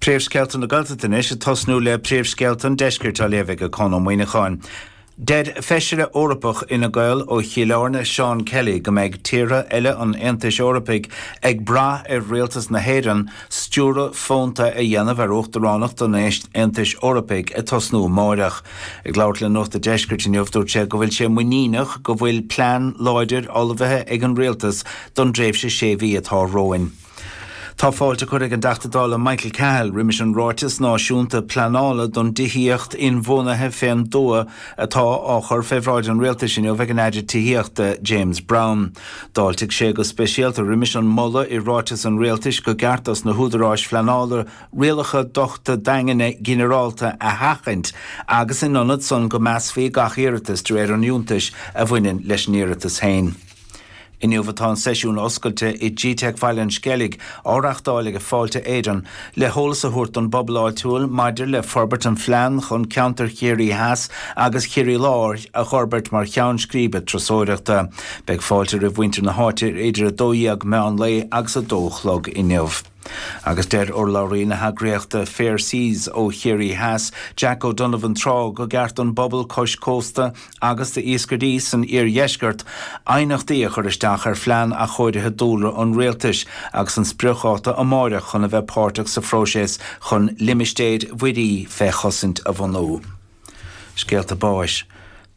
Príomhscéalta na Gaeltachta anois ag tosnú le Príomhscéalta an Deiscirt á léamh ag Conn Ó Muíneacháin. Deir Feisire Eorpach Fhine Gael ó Chill Airne Seán Kelly go mbeidh tíortha eile an Aontais Eorpaigh ag brath ar Rialtas na hÉireann stiúradh fónta a dhéanamh ar Uachtaránacht an Aontais Eorpaigh ag tosnú amáireach. Ag labhairt le Nuacht an Deiscirt inniu dúirt sé go bhfuil sé muiníneach go bhfuil plean láidir ullmhaithe ag an Rialtas don dtréimhse sé mhí atá romhainn. Tá fáilte curtha ag an dTeachta Dála Michael Cahill roimis an Ráiteas Náisiúnta Pleanála don dTithíocht Inbhuanaithe fén dtuath atá á chur fé bhráid an Rialtais inniu ag an Aire Tithíochta, James Browne. D'fháiltigh sé go speisialta roimis an moladh i ráiteas an Rialtais go gceart dos na húdaráis phleanála rialacha dochta daingne ginearálta a sheachaint agus in ionad san go measfaí gach iarratas de réir an fhiúntais a bhaineann leis an iarratas féin. Inniu atá an seisiún oscailte i GTeic Bhaile an Sceilg á reachtáil ag Fáilte Éireann le heolas a thabhairt don bpobal áitiúil maidir le forbairt an phlean chun ceantar Chiarraí Theas agus Chiarraí Láir a dh'fhorbairt mar cheann scríbe turasóireachta. Beidh fáilte roimh mhuintir na háite idir 12:00 meán lae agus a dó a chlog inniu. Agus deir urlabhraí na heagraíochta Fair Seas ó Chiarraí Theas, Jack O'Donovan Trá go gceart don bpobal cois cósta agus d'iascairí san iardheisceart aighneachtaí a chur isteach ar phlean athchóirithe dúlra an rialtais agus an spriocdháta amáireach chun a bheith páirteach sa phróiseas chun limistéir mhuirí fé chosaint a bhunú. Scéalta báis.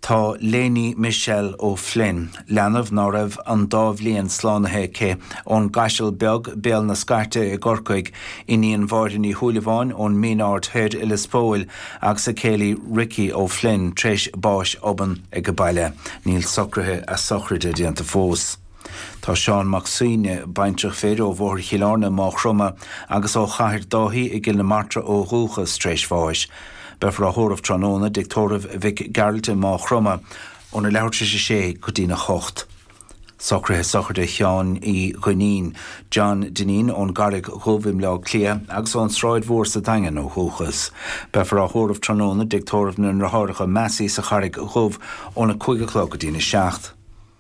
Tá Lainey Michelle O'Flynn, leanbh ná raibh an dá bhliain slánaithe aici, ón gCaiseal Beag, Béal na Scairte i gCorcaigh, iníon Mháire Ní Shúilleabháin ón Min Aird Thoir i Lios Póil agus a céile Richie O'Flynn, tar éis báis obann age baile. Níl socruithe a sochraide déanta fós. Tá Seán Mac Suibhne, baintreach fir ó Bhóthar Chill Airne, Maigh Chromtha, agus ó Chathair Dáithí i gCill na Martra ó dhúchas, tar éis bháis. Beifear á thórramh tráthnóna i dtigh tórraimh Mhic Gearailt i Maigh Chromtha, óna leathuair tar éis a sé go dtína hocht. Socruithe sochraide Sheáin Uí Dhuinnín, John Dineen, ón gCarraig Dhubh i mBleá Cliath agus ón tSráid Mhór sa Daingean ó dhúchas. Beifear á thórramh tráthnóna i dtigh tórraimh na nDeartháireacha Massey sa Charraig Dhubh, óna cúig a chlog go dtína seacht.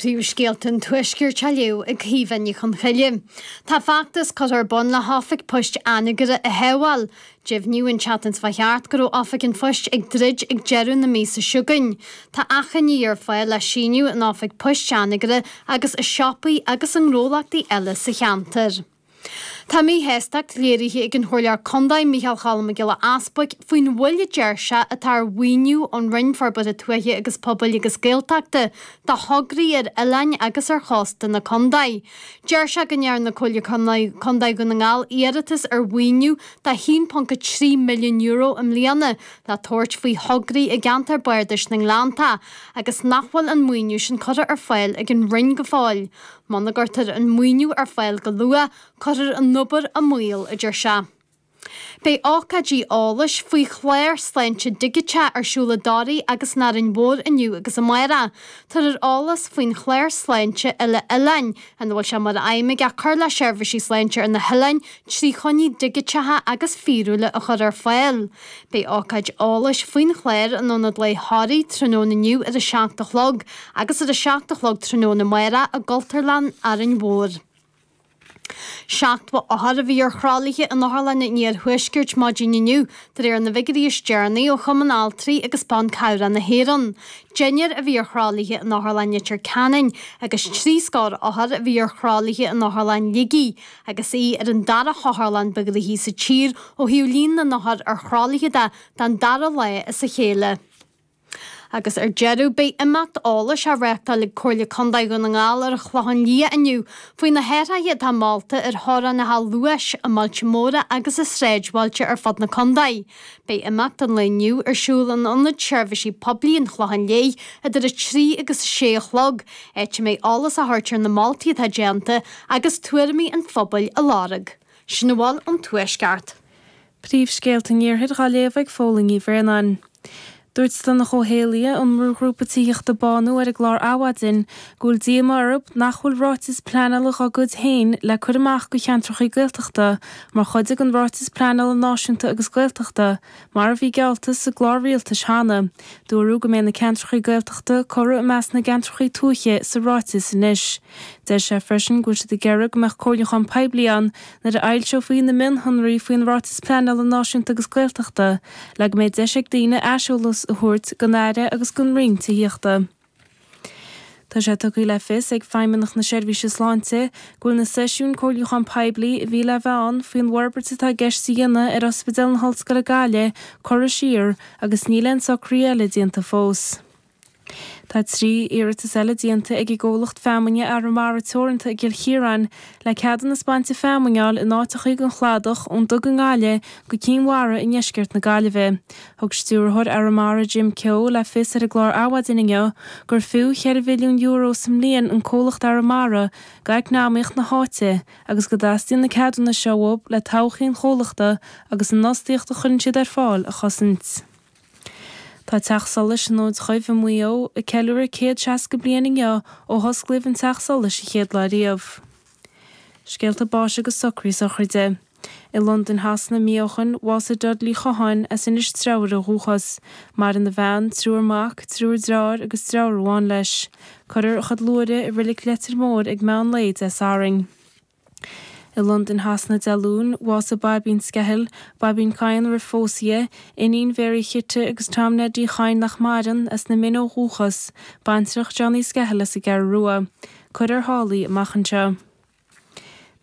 Príomhscéalta an Tuaiscirt á léamh ag Caoimhe Ní Chonchoille Tá feachtas curtha ar bun le hOifig Poist Anagaire a shábháil Deimhníodh an tseachtain seo chuaigh thart go raibh Oifig an Phoist ag druid ag deireadh na míosa seo chugainn Tá achainí ar fáil le síniú in Oifig Poist Anagaire agus i siopaí agus i ngnólachtaí eile sa cheantar. Tá míshástacht léirithe ag an Chomhairleoir Contae Micheál Choilm Mac Giolla Easbuig faoin mhoill a deir sé atá ar mhaoiniú ón Roinn Forbartha Tuaithe agus Pobail agus Gaeltachta do thograí ar oileáin agus ar chósta na contae. Deir sé go ndearna Comhairle Contae Dhún na nGall iarratas ar mhaoiniú de €1.3 milliún i mbliana le tabhairt faoi thograí i gceantar Bardais na nGleanntach agus nach bhfuil an maoiniú sin curtha ar fáil ag an Roinn go fóill. Muna gcuirtear an maoiniú ar fáil go luath, cuirfear an obair i mbaol, a deir sé. Beidh ócáidí eolais faoi chlár sláinte digiteach ar siúl i dToraigh agus in Árainn Mhór inniu agus amárach. Tabharfar eolas faoin chlár sláinte uile-oileáin, ina bhfuil sé mar aidhm aige cur le seirbhísí sláinte ar na hoileáin trí choinní digiteacha agus fíorúla a chur ar fáil. Beidh ócáid eolais faoin chlár in Ionad Lae Thoraí tráthnóna inniu ar a seacht a chlog agus ar a seacht a chlog tráthnóna amárach i gCultúrlann Árainn Mhór. Seachtó othar a bhí ar thralaithe in otharlanna an Iarthuaiscirt maidin inniu, de réir na bhfigiúirí is deireanaí ó Chumann Altraí agus Ban Cabhrach na hÉireann. Deichniúr a bhí ar thralaithe in Otharlann Leitir Ceanainn agus trí scór othar a bhí ar thralaithe in Otharlann Shligigh, Agus í ar an dara hotharlann ba ghnaithí sa tír ó thaobh líon na n-othar ar thralaithe de don dara lá as a chéile. Agus ar deireadh, beidh imeacht eolais á reáchtáil ag Comhairle Contae Dhún na nGall ar an Chlochán Liath inniu faoi na hathraithe atá molta ar theorainneacha luais i mbailte móra agus i sráidbhailte ar fud na contae. Beidh imeacht an lae inniu ar siúl in Ionad Seirbhísí Poiblí an Chlocháin Léith idir 3 agus 6 a chlog, áit a mbeidh eolas á thabhairt ar na moltaí atá déanta agus tuairimí an phobail á lorg. Sin a bhfuil ón Tuaisceart. Príomhscéalta an Iarthair dá léamh ag Fódhla Ní Bhraonáin. Dúirt Donncha Ó hÉallaithe ón mbrúghrúpa tithíochta Bánú ar an gclár Adhmhaidin go bhfuil díomá orthu nach bhfuil ráiteas pleanála dá gcuid féin le cur amach do cheantracha Gaeltachta mar chuid den Ráiteas Pleanála Náisiúnta agus Gaeltachta mar a bhí geallta sa gclár rialtais cheana. Dúradh go mbeidh na ceantracha Gaeltachta curtha i measc na gceantracha tuaithe sa ráiteas anois. Deir sé freisin go bhfuil siad ag iarraidh go mbeadh comhairliúchán poiblí ann Nuair a fhoilseofaí na mionshonraí faoin Ráiteas Pleanála Náisiúnta agus Gaeltachta, le go mbeadh deis ag daoine aiseolas a thabhairt don Aire agus don Roinn Tithíochta. Tá sé tugtha le fios ag Feidhmeannacht na Seirbhíse Sláinte go bhfuil na seisiúin comhairliúcháin poiblí a bhí le bheith ann faoin bhforbairt atá i gceist a dhéanamh ar Ospidéal na hOllscoile Gaillimh curtha siar agus níl aon socruithe eile déanta fós. Tá trí iarratas eile déanta ag an gcomhlacht feamainne Arramara Teoranta i gCill Chiaráin le ceadúnais bainte feamainne a fháil in áiteachaí den chladach ón Dug i nGaillimh go Cinn Mhara i ndeisceart na Gaillimhe. Thug Stiúrthóir Arramara Jim Keogh le fios ar an gclár Adhmhaidin inniu gur fiú €4 mhilliún sa mbliain an comhlacht Arramara d'eacnamaíocht na háite agus go dteastaíonn na ceadúnais seo uathu le todhchaí an chomhlachta agus an fhostaíocht a chuireann siad ar fáil a chosaint. Tá Teach Solais an Fhóid Dhuibh i Maigh Eo ag ceiliúradh céad seasca bliain inniu ó hosclaíodh an teach solais an chéad lá riamh. Scéalta báis agus socraí sochraide. I Londain Shasana mí ó shin bhásaigh Dudley Chatháin as Inis Treabhair ó dhúchas. Maireann a bhean, triúr mac, triúr dreáir agus dreabhar amháin leis. Cuirfear a chuid luaithre i Reilig Leitir Móir ag meán lae Dé Sathairn. I Londain Shasana Dé Luain, bhásaigh Baibín Skehill, Baibín Chadhain roimh phósadh di, iníon Mhary Chite agus Tom Ned Uí Chadhain nach maireann, as na Mine ó dhúchas, baintreach Johnny Skehill as an gCeathrú Rua. Cuirfear thall í amach anseo.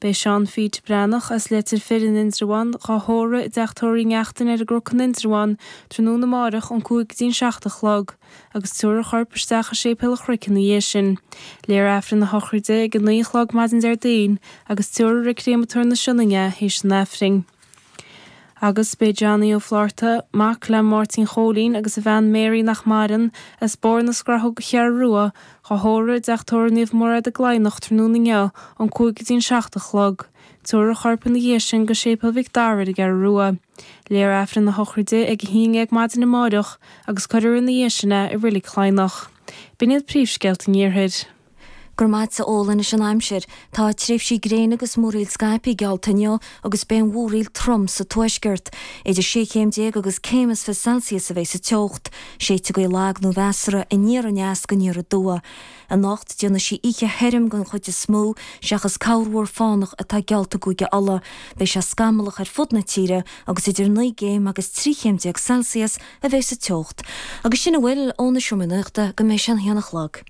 Beidh Seán Phete Breathnach, as Leitir Fir in Indreabhán, dhá thórramh i dTeach Tórraimh Uí Neachtain ar an gCnoc in Indreabhán, tráthnóna amáireach, ón cúig go dtí an seacht a chlog. agus tabharfar a chorp isteach i Séipéal an Chnoic ina dhiaidh sin. Léifear Aifreann a shochraide ag a naoi a chlog maidin Déardaoin agus tabharfar chuig Créamatóir na Sionainne é théis an Aifrinn. Agus beidh Johnny Ó Flátharta, mac le Máirtín Chóilín agus a bhean Mary, nach maireann, as Bóthar na Scrathóg, an Cheathrú Rua, dhá thórramh i dTeach Tórraimh Naomh Mairéad i gCladhnach tráthnóna inniu ón cúig go dtí an seacht a chlog. Tabharfar a chorp ina dhiaidh sin go Séipéal Mhic Dara ar an gCeathrú Rua. Léifear Aifreann a shochraide ag a haon dhéag maidin amáireach agus cuirfear ina dhiaidh sin é i Roilig Cladhnach. B'in iad príomhscéalta an Iarthair. Go raibh maith agatsa, Eoin. Anois an aimsir. Tá tréimhsí gréine agus múraíl scaipthe geallta inniu agus beidh an mhúraíl trom sa tuaisceart. Idir sé chéim déag agus céim is fiche Celsius a bheidh sa teocht. Séidfidh gaoth lag nó mheasartha aniar aneas go aniar aduaidh. Anocht, déanfaidh sí oíche thirim den chuid is mó, seachas corrmhúr fánach atá geallta i gCúige Uladh. Beidh sé scamallach ar fud na tíre agus idir naoi gcéim agus trí chéim déag Celsius a bheidh sa teocht. Agus sin a bhfuil ón Seomra Nuachta go mbeidh sé an haon a chlog.